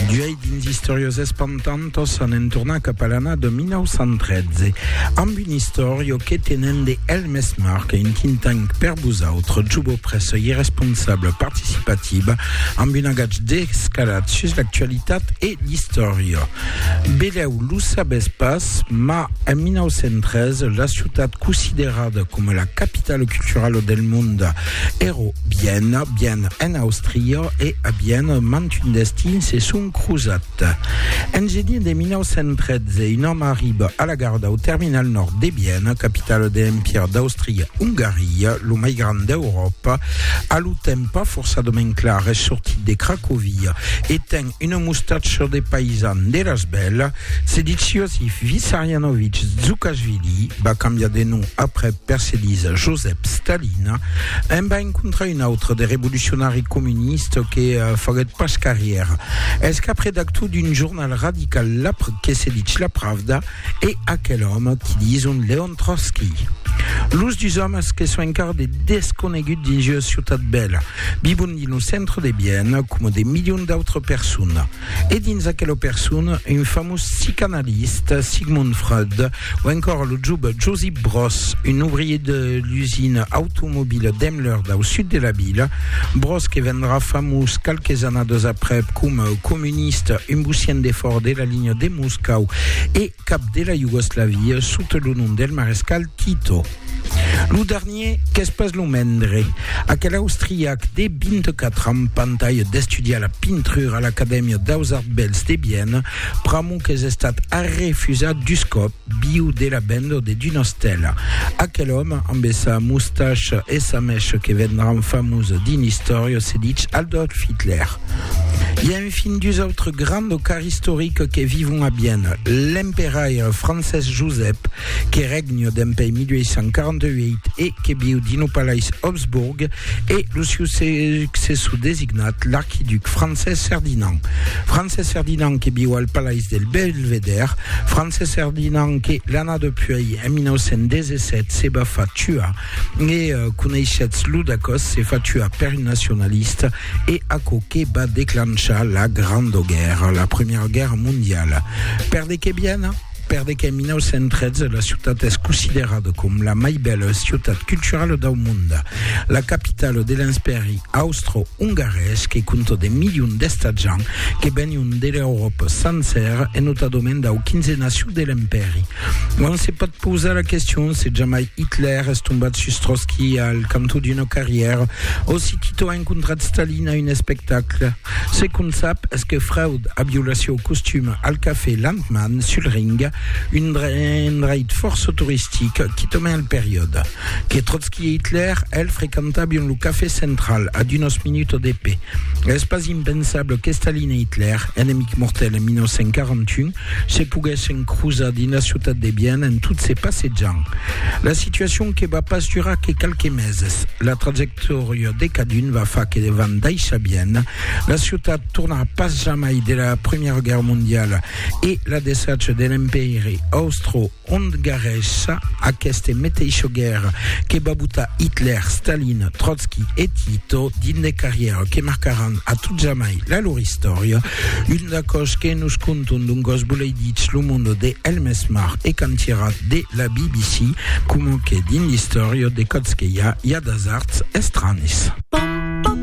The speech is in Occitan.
D'uèi dins Istòrios Espantantos anem tornar cap a l'ana de 1913 amb un istòrio que tenem de Helmes Marc un think tank per vosautres jubo pressa i responsable participativa amb un agatge d'escalat sus l'actualitat e l'istòria beleu lo sabes pas ma en 1913 la ciutat considerada com la capitale culturale del monde Ero bien, bien en Austria e a bien mantun destin se son crosat. En genin de 1913, un òme arriba a la gara dau terminal nòrd de Viena, capitala de l'Empire d'Austria-Ongaria, lo mai grand d'Euròpa, a lo temps pas forçadament clar, es sortit de Cracovia e ten Una mostacha de paisan de las bèlas, Sediciosi Vissarianovich Zukashvili va cambiar de nom après per se disar Josep Stalina, en va encontrar un autre de revolucionari comunista que faguèt pas carrièra. Es cap redactor d'un jornal radical que se dich La Pravda e aquel òme qui dison Leon Trotsky. Los dus òmes que son encara de desconeguts dins ua ciutat bèla. Vivon dins lo centre de Viena coma de milions d'autres personnes. E dins aquela persona, un famós psicanalista, Sigmund Freud, o encora lo jove Josip Broz, un ouvrier de l'usina automobila Daimler dau sud de la vila, Broz que vendrà famós qualques annadas aprèp coma comunista, un bucient de fòra de la linha de Moscau e cap de la Iugoslavia sota lo nom del marescal Tito. Lo dernier, qu'es pas lo mendre, aquel austriac de 24 ans pantalha d'estudiar la pintrura a l'Acadèmia daus Arts Bèls de Viena, pr'amor qu'es estat arrefusat dus còp viu de la venda de d'una estèla. Aquel òme, ambe sa mustacha e sa mècha que vendràn famosa dins l'istòria, se ditz Adolf Hitler. Fin dus autres grands docars istoriques que vivon a Viena, l'emperaire Francés Josep, que règne dempèi 1848 e que viu dins lo palais Habsburg, e lo siu successor designat, l'archiduc Francés Ferdinand. Francés Ferdinand que viu al palais del Belvedère, Francés Ferdinand que, l'ana depuèi, en 1917, se va far tuar, e coneishetz lo dacòs, se fa tuar per un nacionalista, e aquò que va declanchar la Granda Guèrra, la Primièra Guèrra Mondiala. Per de qué bien? Per de qu'en 1913 la ciutat es considerada com la mai bèla ciutat culturala dau monde, la capitala de l'Enspèri austro-ongarés que compta de milions d'estatjants que venion de l'Euròpa sancèra e notadament dau quinzenasiu de l'Empèri. Non se pòt pausar la question se jamai Hitler es tombat sus Trotski al cantó d'una carrièra o si Tito a encontrat Stalin a un espectacle. Ce qu'on sap es que Freud a violat sieu costum al cafè Landmann sul Ring, un endreit fòrça toristic qui tombe al periòde que Trotski e Hitler el frequentabion lo cafè central ad unos minutos de pè. Es pas impensable que Stalin e Hitler, enemics mortèls en 1941, Se poguèssen crosar dins la ciutat de Viena en tot se passejant. La situacion que va pas durar que qualques meses. La trajectòria de cadun va far que van daissar Viena. La ciutat tornarà pas jamai de la Primièra Guèrra Mondiala e la desatge de l'Empèiri Austro Ont garrèssa aqueste meteisho guèrra que va botar Hitler, Stalin, Trotsky e Tito dins de carrièra que marcaràn a tot jamai la lor istòria. Un d'aquò's que nos conton d'un gòs boleiditz lo monde de Helmes Mar e Cantirat de la BBC, coma que dins l'istòria de Còtzqueia i a d'asards estranis.